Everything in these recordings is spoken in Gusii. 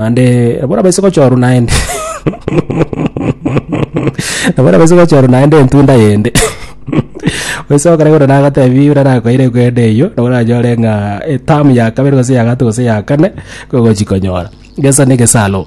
naende nabo orabaise gochorwa naende nabo orabaise gochorwa naende entunda yende gose ogokora igoro nagatebi buna nakoeire ekwende eyio nabo oranyore ng'a etamu ya kabere gose ya gato gose ya kane kogochi konyora gesa na egesalo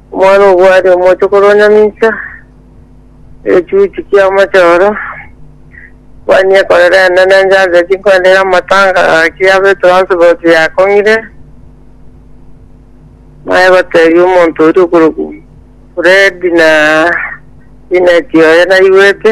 Omwana obwo aria omochokoro o Nyamisa, egechuchu ki'amachoro, Mani ekorera enene enche ase chinkwende y'amatanga gaki abe transport yakong'ire, naye gotebia omonto oria okorokwa Fred na Janet oye naigwete.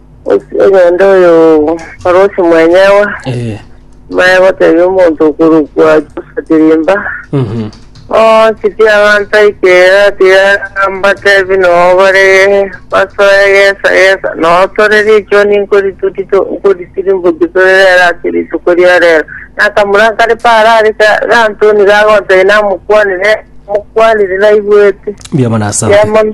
Ase egento oyo Parosi mwenyewe Eh. maya gotebia omonto okorokwa Josa Tirimba Mhm. onsi tiaganta ikera tigambatebi noo bare basoe gesa gesa noo tore richwa ninkoritutito nkoritirimboki tore rero ase rituko ria rero nakamura kare parare ka- gantoni gagotebi namokwanire mokwanire naigwete Biamanasaba. Yamana.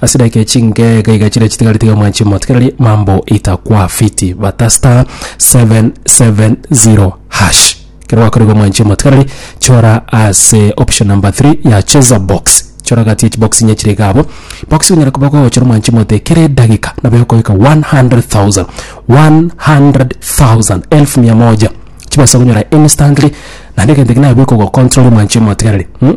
Ase edaika echi inke iga iga chiria chitigare tiga mwanche motigereri mambo itakwa fiti bata star 770 hash kero gwakorigwa mwanche motigereri chora ase option number 3 ya cheza box chora gati echi box inye chire iga abo box onyare koba gochora mwanche mote kere edagika nabo egokoika 100000 100000 elfu mia moja chibasa gonyora instantly naende egento eke naye bikogo control mwanche motigereri mm?